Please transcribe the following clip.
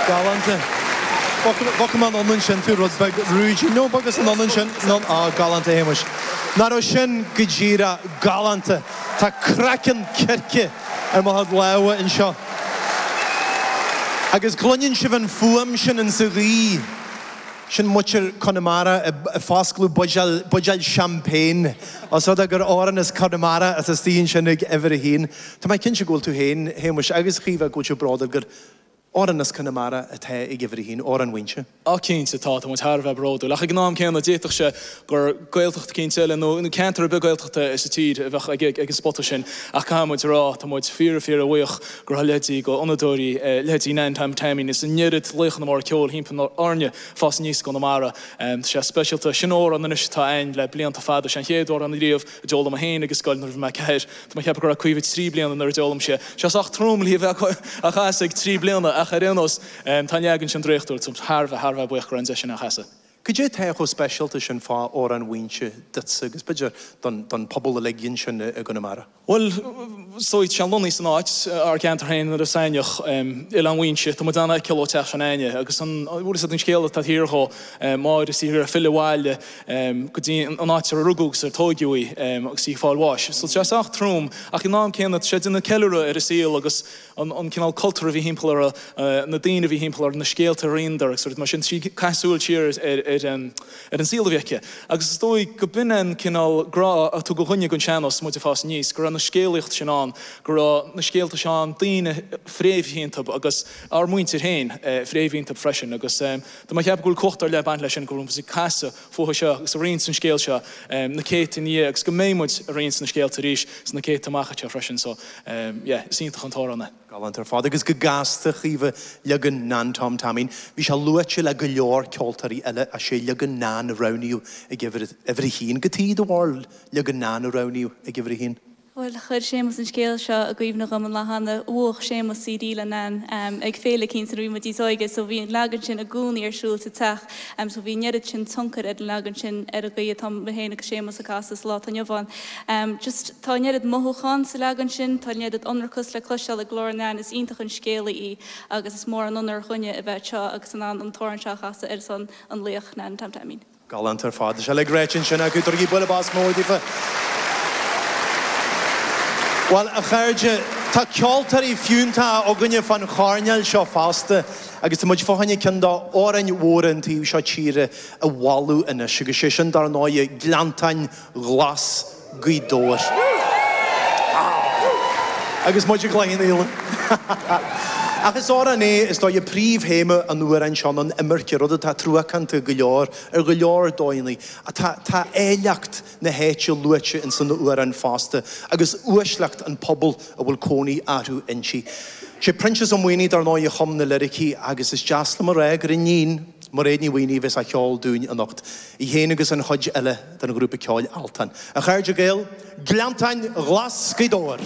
Galánta. Bhfaca mé an ionadh sin, tú rud beag ruaidín. No, b'fhacas an ionadh sin. No, á, galánta, a Shéamuis. Nach raibh sin go díreach galánta! Tá craiceann circe ar mo chuid lámha anseo. Agus cluineann sibh an fuaim sin in sa ghaoth. Sin muintir Chonamara ag foscladh buidéal, buidéal champagne, os rud é gur amhrán as Conamara atá istigh ansin ag uimhir a haon. Tá mé cinnte go bhfuil tú féin, Shéamuis, agus Caoimhe go bhfuil bród oraibh gur amhrán as Conamara atá ag uimhir a haon, Amhrán Mhaínse. Ó, cinnte, tá, tá muid thar a bheith bródúil. Ach ag an am céanna, d'fhéadfadh sé gur Gaeltacht eicínt eile, nó ceantar ar bith Gaeltachta sa tír, a bheadh ag an spota sin. Ach caithfidh muid a rá, tá muid fíor, fíor bhuíoch gur thug leithéidí d'fhonnadóirí, leithéidí Nan Tom Taimín, is an oiread laochanna móra ceoil thimpeall orainn ag fás aníos i gConamara. Tá sé speisialta. Sin amhrán anois atá ann le blianta fada. Sé an chéad amhrán riamh a d'fhoghlaim mé féin ag an scoil nuair a bhí mé ceathair Tá mé ag ceapadh go raibh Caoimhe trí bliana nuair a d'fhoghlaim sí é, tá sé sách trom le bheith á chasadh ag trí bliana, ach ar aon nós, tá an leagan sin draíochtúil, táimid thar a bheith, thar a bheith buíoch go raibh an deis againn é a chasadh. Cad é atá chomh speisialta sin fá Amhrán Mhaínse duitse agus, b'fhéidir, don phobal uilig ansin i gConamara? Bhuel, is dóigh, tá sé lonnaithe san áit, ár gceantar féin nuair a sáinneadh Oileán Mhaínse, tá muid in ann é a fheiceáil ó teach s'againne, agus an, bhuel, séard é an scéal atá taobh thiar dhó, Máire is í ag iarraidh filleadh abhaile, go dtí an áit ar rugadh agus ar tóigeadh í agus í ag fáil bháis. So tá sé sách trom ach ag an am céanna tá sé ag déanamh ceiliúradh ar a saol agus an cineál cultúr a bhí thimpeall uirthi, na daoine a bhí thimpeall uirthi, na scéalta a roinneadar agus rudaí mar sin. Tá sí ag caitheamh súil siar ar an saol a bhí aici agus is dóigh go b'in é an cineál grá a tugadh dhuinne don sean-nós muid ag fás aníos, go raibh na scéalaíocht sin ann, go raibh na scéalta seo ann, daoine fréamhaithe iontu agus ár muintir féin fréamhaithe iontu freisin agus. Tá mé ag ceapadh go bhfuil cumhacht ar leith ag baint leis sin, go raibh muid ag casadh fúthu seo agus ag roinnt an scéal seo na céadta ina dhiaidh agus go mbeidh muid ag roinnt na scéalta arís sna céadta amach anseo freisin. So, yeah, is iontach an t-amhrán é. Galánta ar fad, agus go gasta a Chaoimhe, leagan Nan Tom Taimín. Bhí sé luaite le go leor ceoltóirí eile ach sé leagan Nan a roghnaíodh ag uimhir a haon, cad é do bharúil, leagan Nan a roghnaíodh ag uimhir a haon. Bhuel, chuir Séamus an scéal seo i gcuimhne dhom an lá cheana, bhuaigh Séamus CD le Nan ag féile eicínt nuair a bhí muid níos óige so bhí an leagan sin i gcónaí ar siúl sa teach so bhí an oiread sin tionchair ag an leagan sin ar an gcaoi atá mé féin agus Séamus ag casadh sa lá atá inniu ann. Just, tá an oiread mothúchán sa leagan sin, tá an oiread ionracas le cloisteáil i glór Nan, is iontach an scéalaí í agus is mór an onóir dhuinne a bheith anseo agus in ann an t-amhrán seo a chasadh ar son an laoich Nan Tom Taimín. Galánta ar fad. Tá sé uilig ráite ansin acu. Tugaigí bualadh bos mór daofa. Bhuel, a chairde, tá ceoltóirí fiúntacha againne fán choirnéal seo fosta agus tá muid fá choinne ceann d'amhráin mhóra an taobh seo tíre a bhualadh anois agus sé sin, dar ndóighe, Gleanntáin Ghlas Gaoth Dobhair. Agus muid i gCloich Cheann Fhaola. Ach is amhrán é, is dóigh, príomhthéama an amhráin seo ná an imirce, rud atá truacánta go leor ar go leor dóigheanna. Tá áilleacht na háite luaite ins an amhrán fosta, agus uaisleacht an pobal a bhfuil cónaí orthu inti. Sé Proinsias Ó Maonaigh, dar ndóigh, a chum na liricí, agus is deas liom a rá gur í a iníon, Mairéad Ní Mhaonaigh, a bheas á cheol dúinn anocht, í féin agus an chuid eile. den ghrúpa ceoil Altan. A chairde Gaeil, Gleanntáin Ghlas Ghaoth Dobhair!